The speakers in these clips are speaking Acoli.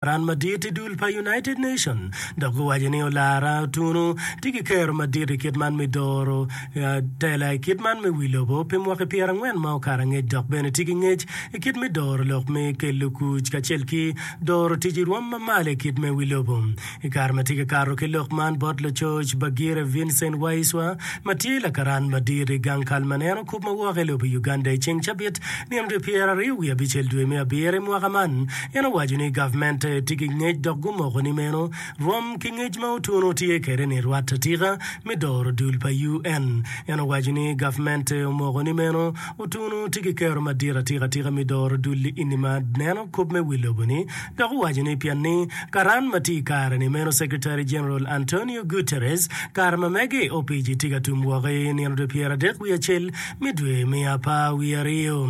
Ran madit i dul pa United Nation dok giwaco ni olara otunu tye ki kero madit i kit man me doro tela i kit man me wi lobo pi mwaki pyera angwen ma okato angec dok bene tye ki ngec i kit me doro lok me kelo kuc kacel ki doro tic i rwom ma malo i kit me wi lobo. I kare ma tye ka kato ki lok man bot lacoc Bagire Vincent Waiswa ma tye lakaran madit i gang kal man en okup ma woko i lobo Uganda i ceng cabit nino dye pyera aryo wiye abicel dwe me abiro i mwaka man En owaco ni gavmente tye ki ngec dok gumoko ni meno rom ki ngec ma Otuno tye kwede ni rwat atika me doro dul pa UN. En owaco ni gavmente omoko ni meno Otuno tye ki kero madit atika tika me doro dul i ini ma neno kop me wi lobo ni dok owaco ni pien ni karan ma tye i kare ni meno Secretary General Antonio Guterres kare ma mege opici tye ka tum woko i nino dwe pyeradek wiye acel me dwe me apar wiye aryo.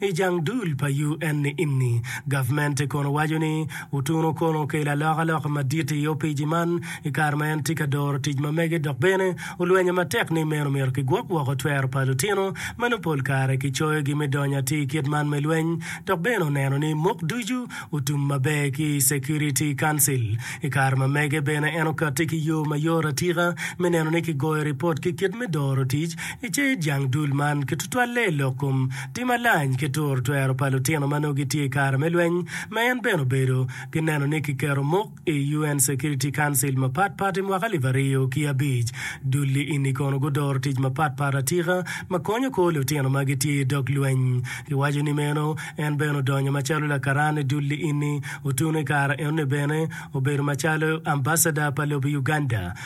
I jang dul pa UN ni-inni, gavmente kono waco ni otuno kono okelo alokaloka madit i opici man i kare ma en tye ka doro tic ma mege dok bene olwenyo matek ni meno myero kigwok woko twero pa lutino ma nongo pol kare kicoyogi me donyo atir kit man me lweny dok bene oneno ni mok ducu otum maber ki i Security Council. I kare ma mege bene en okati ki yo mayot atika me neno ni kigoyo ripot ki kit me doro tic I cal jang dul man, kitutwalle i lok kom tim malany ki turo twero pa lutino ma nongo gitye i kare me lweny, ma en bene obedo, ki neno ni kiketo muk i UN Security Council mapat pat i mwaka alip aryo ki abic. Dul-li eni kono gudoro tic mapat pat atika ma konyo kor lutino ma gitye i dog lweny. Iwaco ni meno, en bene odonyo macalo lakaran i dul-li eni, otuno i kare enoni bene obedo macalo Ambassador pa lobo Uganda,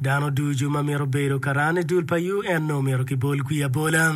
Dano ducu ma mito bedo karan i dul pa UN-nu omyero kibol kwi abola.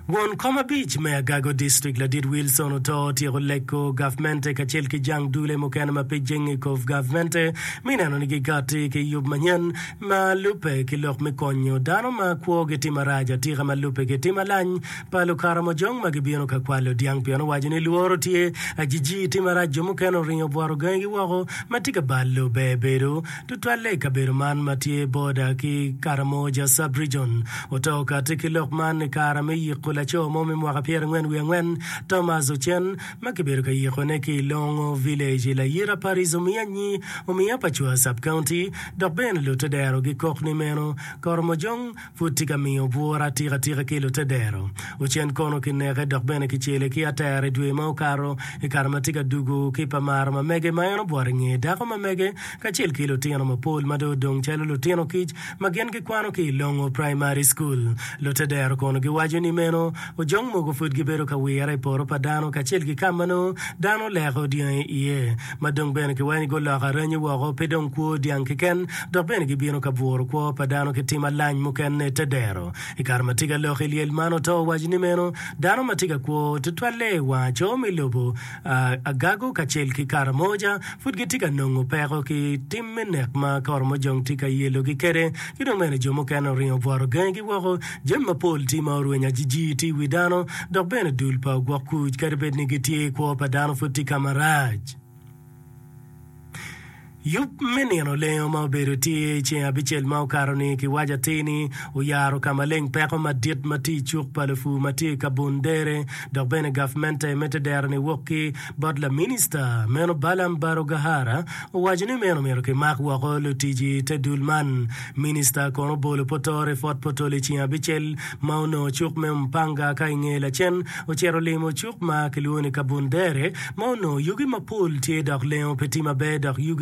Won kom abic me Agago District Ladit Wilson oto otyeko leko gavmente kacel ki jang dule mukene ma pe jenge i kov gavmente mi neno ni gigatti ki yub manyen ma lubbe ki lok me konyo dano ma kwogi tye marac atika ma lubbe ki tim alany pa Lukaramojong ma gibino ka kwalo dyang pien owaco ni lworo tye. Ajiji, tim marac jo mukene oringo obworo gangigi woko ma tye ka balo ber bedo, tutwalle i kabedo man ma tye boda ki Karamoja Sub-Region. Oto kati ki lok man i kare me yiko laco mo me mwaka pyerangwen wiye angwen, Thomas Ocen, ma kibedo ka yikone ki i Longo Village i layira pa Rizomianyi, Omiya pa Cua Sub-County, dok bene lute dero gikok ni meno. Koromojong. pud tye ka miyo bwura atikatika ki Lutedero. Ocen kono kineke dok bene kicele ki atera i dwe ma okato i kare ma tye ka dugo ki pa maro ma mege ma en obwot i nge dako ma mege kacel ki lutino mapol ma dong odong calo lutino kic ma gin gikwano ki i Longo Praimari Cukul. Lutedero kono giwaco ni meno ojong mogo pud gibedo ka wire i poto pa dano kacel ki ka ma nongo dano leko dyangi iye. ma dong bene kiweny guloko aranyi woko, pe dong kwo dyang keken, dok bene gibino ka bwuro kwo pa dano ki tim alany mukene te dero. I kare ma tika lok i lyel man oto owaco ni meno, dano ma tye ka kwo tutwalle i wang aco me lobo, agago kacel ki karamoja pud gitye ka nongo peko ki tim me nek ma ka oromo jong tye ka yelogi kwede, ki dong bene jo mukene oringo obworo gangigi woko. Jami mapol tye ma orwenyo ajijir tye i wi dano, dok bene dul pa ogwok kuc kadi bed ni gitye, kwo pa dano pud tye ka marac. Yub me nino lengo ma obedo tye i ceng abicel ma okato-ni kiwaco atir ni oyaro ka maleng peko madit ma tye i cuk pa lupur ma tye i Kabundere, dok bene gavmente mito dero ni wok ki Bot laminista meno Balaam Barugahara owaco ni meno myero kimak woko lutic i te dul man. Minista kono obolo Potor i Fort Portal i ceng abicel ma onongo cuk me Umpanga ka i nge lacen ocito limo cuk ma kilwongo ni Kabundere ma onongo yugi mapol tye dok lengo pe tye maber dok yugi